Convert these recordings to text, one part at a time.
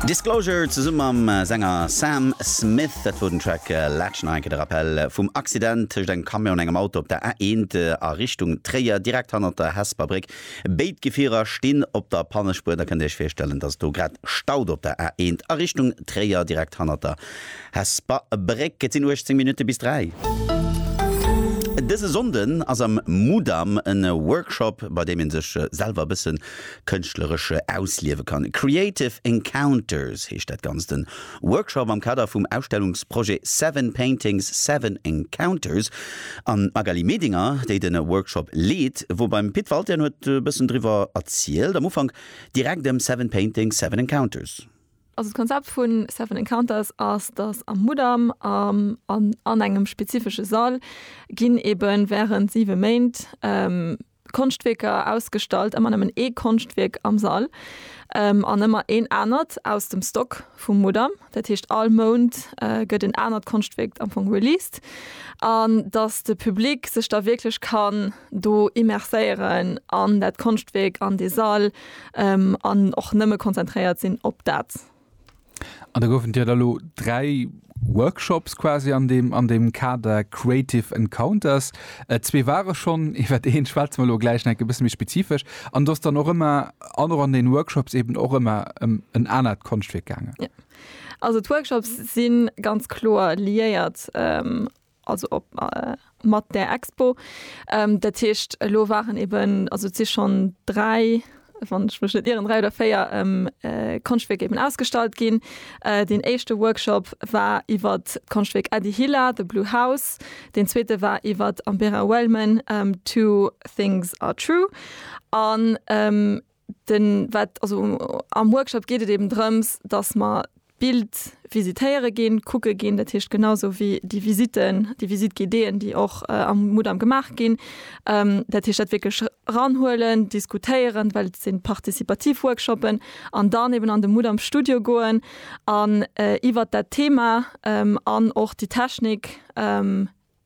Disclosure zesumm mam Sänger Sam Smith. Dat wor den Track Last Night, de Rappell vum Accident tëscht engem Camion an engem Auto op der A1 a Richtung Tréier, direkt hannert der Hesper Bréck. Béid Gefierer stinn op der Pannespuer. Der kënnt Iech virstellen, dass et do grad staut op der A1 a Richtung Tréier, direkt hannert der Hesper Bréck. Et sinn 18 Minutte bis 3. Dëse Sonnden ass am Mudam e Workshop, bei deem ee sech selwer e bëssen kënschtleresche ausliewe kann. Creative Encounters heescht dat Ganzt. E Workshop am Kader vum Ausstellungsprojet Seven Paintings, Seven Encounters. An d'Magali Medinger, déi de Workshop leet, wor beim Pit Walté an huet e bëssen driwwer erzielt. Am Ufank direkt ëm Seven Paintings, Seven Encounters. Also d'Konzept vu Seven Encounters ass, datt am Mudam an engem spezifesche Sall ginn eebe wärend siwe Méint, Konschtwierker ausgestallt, ëmmer nëmmen ee Konschtwierk am Sall an ëmmer een anert aus dem Stock vum Mudam. Dat heescht all Mount gëtt en anert Konschtwierk am Fong released an datt de Public sech da wierklech kann do immerséieren an dat Konschtwierk, an dee Sall an och nëmme konzentréiert sinn op dat. An da goufen dir da lo dräi Workshops quasi an deem, an deem Kader Creative Encounters. Äh, zwee ware schonn, iwwert een schwätze mer lo gläich nach e bësse méi spezifesch. An do ass dann och ëmmer, an och an den Workshops eben och ëmmer ëm en anert Konschtwierk gaangen. Jo. Also d'Workshops si ganz kloer liéiert also op mat där Expo. Dat heescht elo waren eben, also et si schonn dräi, wann ech mech net ieren, dräi oder véier Konschtwierk eben ausgestallt ginn. Deen éischte Workshop war iwwert d'Konschtwierk Eddie Hila, The Blue House, deen zweete war iwwert Ambera Wellman, Two Things Are True an. Den wat also am Workshop geet et eben drëms, dass mer d'Bild visitéiere ginn, kucke ginn, dat heescht genausou wéi déi Visiten, déi Visite guidéeën, déi och am Mudam gemaach ginn. Dat heescht dat wierklech ranhuelen, diskutéieren, well et sinn participativ Workshoppen, an dann eben an de Mudam Studio goen an iwwert dat Thema an och déi Technik,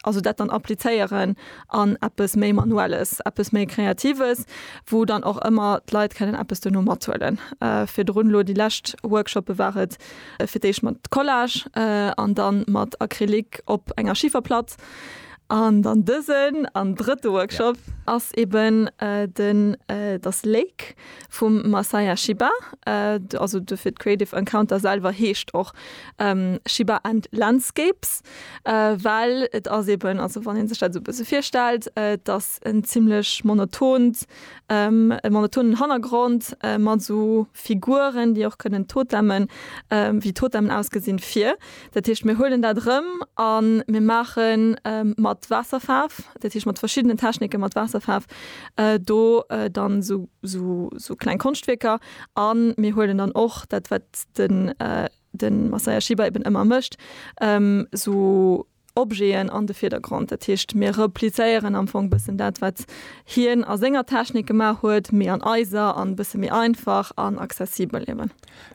Also dat dann applizéieren an eppes méi Manuelles, eppes méi Kreatives, wou dann och ëmmer d'Leit kënnen eppes duerno mathuelen. Virdrun elo déi lescht Workshoppe war et fir d'éischt mat Collage an da mat Acrylic op enger Schiferplatt. An dann dësen an drëtte Workshop ass eben den Das Lake vum Masaya Shiba. Also dofir d'Creative Encounter selwer heescht och Shiba and Landscapes. Well et ass eben, also wann ee sech dat esou e bësse virstellt, et ass en zimlech monotont, e monotonen Hannergrond mat esou Figuren, déi och kënnen Totemmen, wéi Totemmen ausgesinn, vir. Dat heescht, mir huelen dat erëm a mir maache mat Waasserfaarf, dat heescht mat verschiddenen Technike mat Waasserfaarf do dann esou, esou kleng Konschtwierker a mir huelen dann och dat, wat de. den Masaya Shiba eben ëmmer mécht, esou Objeten an de Virdergrond. Dat heescht, mir replizéieren am Fong bëssen dat, wat hien a senger Technik gemaach huet, mee an eiser an e bësse méi einfach an accessibel eben.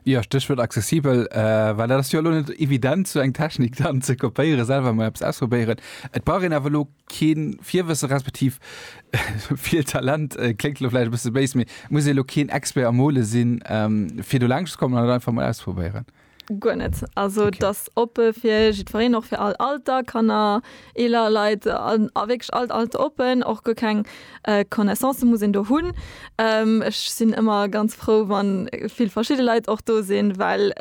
Jo, Stéchwuert accessibel, well dat ass jo elo net evident, esou eng Technik dann ze kopéieren, selwer emol eppes ausprobéieren. Et brauch een awer elo keen Virwëssen respektiv vill Talent, kléngt elo vläicht e bësse béis, mee muss ee elo keen Expert am Mole sinn, fir do laangscht ze kommen an et einfach mol auszeprobéieren? Guer net. Also et ass oppe fir jiddwereen, och fir all Alter, Kanner, eeler Leit, a wierklech all Alter oppen. Och guer keng Connaissancë muss een do hunn. Ech sinn ëmmer ganz frou, wa vill verschidde Leit och do sinn, well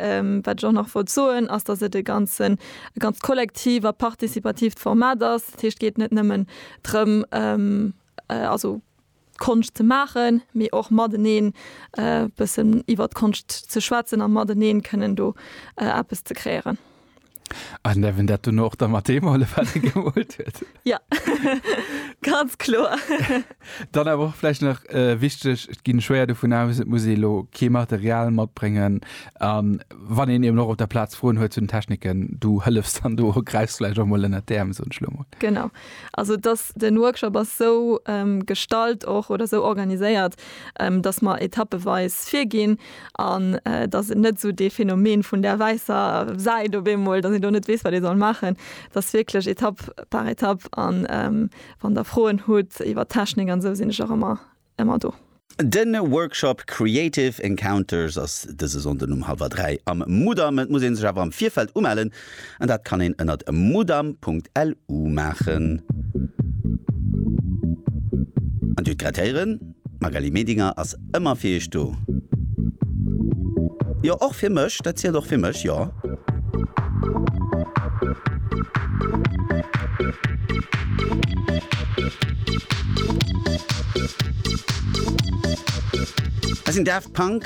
wat ech och nach wollt soen, ass datt et e ganzen, e ganz kollektiv a participativt Format ass. Dat heescht, et geet net nëmmen drëm, also Konscht ze maachen, mee och mateneen e bëssen iwwert d'Konscht ze schwätzen a mateneen kënnen do eppes ze kreéieren. An däerf een dat dono och der Mathémol, wat ee gewollt huet? Ja, ganz kloer. Dann awer och vläicht nach äh, wichteg, et ginn schwéier dovun aus, et muss ee lo kee Material matbréngen. An wann een eben och op der Plaz Froen huet zu den Techniken, du hëllefs dann do, gräifs vläicht och mol ënner d'Äerm, soen ech lo mol. Genau. Also dass den Workshop ass sou ähm, gestalt och oder sou organiséiert, ähm, dass mer etappeweis virginn. An et ass net esou dee Phänomen vun där wäisser Säit op eemol, datt een do net weess, wat ee soll maachen. Et ass wierklech Etapp par Etapp. A wann Der Froen hutt iwwer d'Technik an esou, sinn ech och ëmmer, ëmmer do. De Workshop Creative Encounters ass dëse Sonnden um hallwer dräi am Mudam. Et muss ee sech awer am Virfeld umellen. An dat kann een ënnert mudam.lu maachen. An Dir grattéieren, d'Magali Medinger ass ëmmer fir Iech do. Jo, och fir mech, dat zielt och fir mech, jo. Dat sinn Daft Punk.